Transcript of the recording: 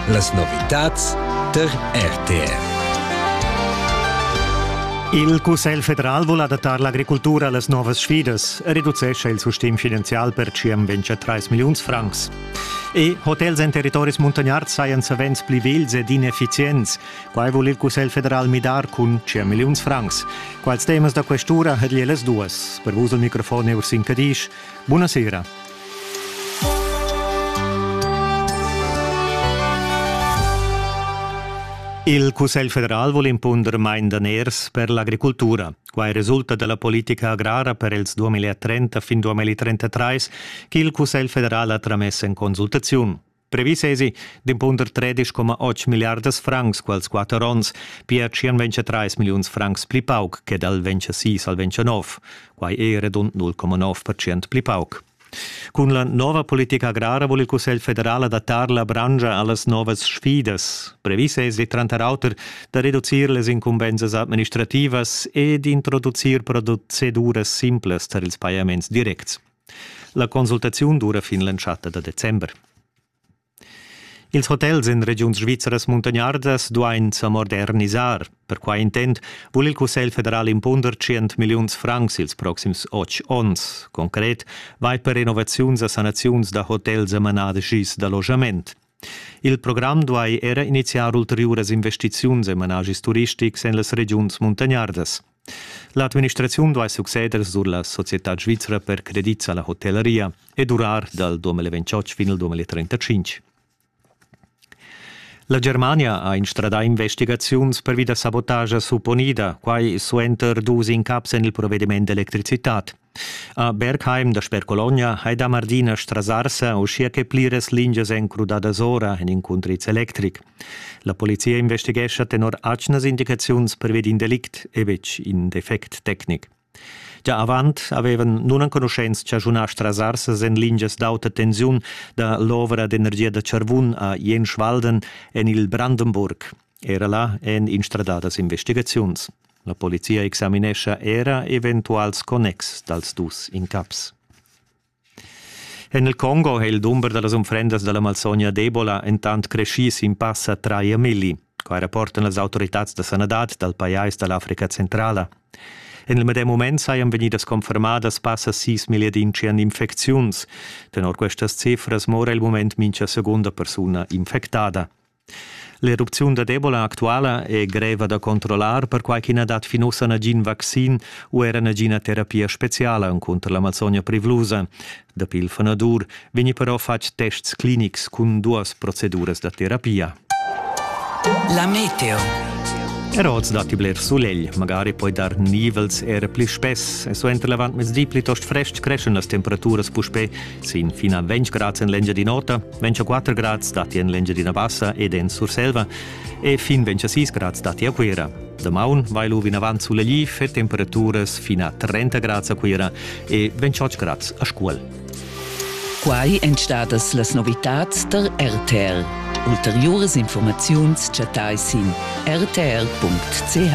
Las novitads tar RTR. Il Cussegl federal vul adattar l'agricultura a las novas sfidas e reducescha il sustegn finanzial per circa 3 milliuns francs. E hotels en territoris muntagnards sajan savens pli vegls ed ineffizients. Quai vul il Cussegl federal midar cun circa milliuns francs. Quals temas da questura ha las duas? Per vus il microfon è Ursin Cadisch. Buonasera. Il Cussegl federal vul impunder main daners per l'agricultura. Quai resulta da la politica agrara per els 2030 fin 2033 ch'il Cussegl federal ha tramess en consultaziun. Previs esi d'impunder 13,8 milliardas francs quels quatter onns, pia 123 milliuns francs pli pauc che dal 26 al 29, quai è redund 0,9% pli pauc. Cun la nova politica agrara vul il Cussegl federal adattar la branscha a las novas sfidas. Previs è tranter auter da reducir les incumbensas administrativas e d'introducir proceduras simplas tar ils pajaments directs. La consultaziun dura fin l'entschatta da december. Ils hotels en regiuns svizras muntagnardas duain sa modernisar. Per quai intent vul il Cussegl federal impunder 100 milliuns francs ils proxims otg onns. Concret vai per renovaziuns a sanaziuns da hotels e manadas gis d'allogament. Il program duai era iniziar ulteriuras investiziuns en manaschis turistics en las regiuns muntagnardas. L'administraziun duai succeder sur la societad svizra per credits a la hotellaria e durar dal 2028 fin al 2035. La Germania ha instradà investigaziuns pervi da sabotagia supponida, quai suenter dus incaps en il provediment d'electricitad. A Bergheim dasper Cologna hai dà mardinas strasarsa uschia che pliras lingias èn crudadas ora en in cuntriz electric. La polizia investighescha tenor atgnas indicaziuns pervi d'in delict e betg in defect tecnic. Gia avant avevan nunenconuschents chaschunà strasarsas en lingias d'auta tensiun da l'ovra d'energia da Charvun a Jenschwalden en il Brandenburg. Era là èn instradadas investigaziuns. La polizia examinescha era eventuals connexs dals dus incaps. En il Congo è il dumber da las unfrendas da la malsogna d'Ebola entant creschì sin passa traia milli. Quai rapportan las autoritads da sanadad dal pajais da l'Africa Centrala. En il medem mument sajan vegnidas confermadas passa sis milliadintschient infecziuns. Tenor questas cifras mora il mument mincha segunda persuna infectada. L'erupziun da Ebola actuala è greva da controllar, perquai ch'i na dat fin ussa nagin vaccin u era nagina terapia speziala cunter l'Amazogna privlusa. Dapi il fanadur vegni però fatg tests clinics cun duas proceduras da terapia. La meteo. Er oz datti bler sulegl, magari poi dar nivels er pli spess e suenter l'avantmezdi plitost frestg creschan las temperaturas puspè sin fin a 20 grad en l'Engiadin'Ota, Ventscha 4 grads datti en l'Engiadina Bassa ed en Surselva e fin Ventscha 6 grads datti a Cuira. Damaun vai lu vinavant sulegli e temperaturas fino a 30 grads a Cuira e 28 grads a Scuol. Quai èn stadas las novitads tar RTL. Ulteriuras informaziuns chattai sin rtl.ch.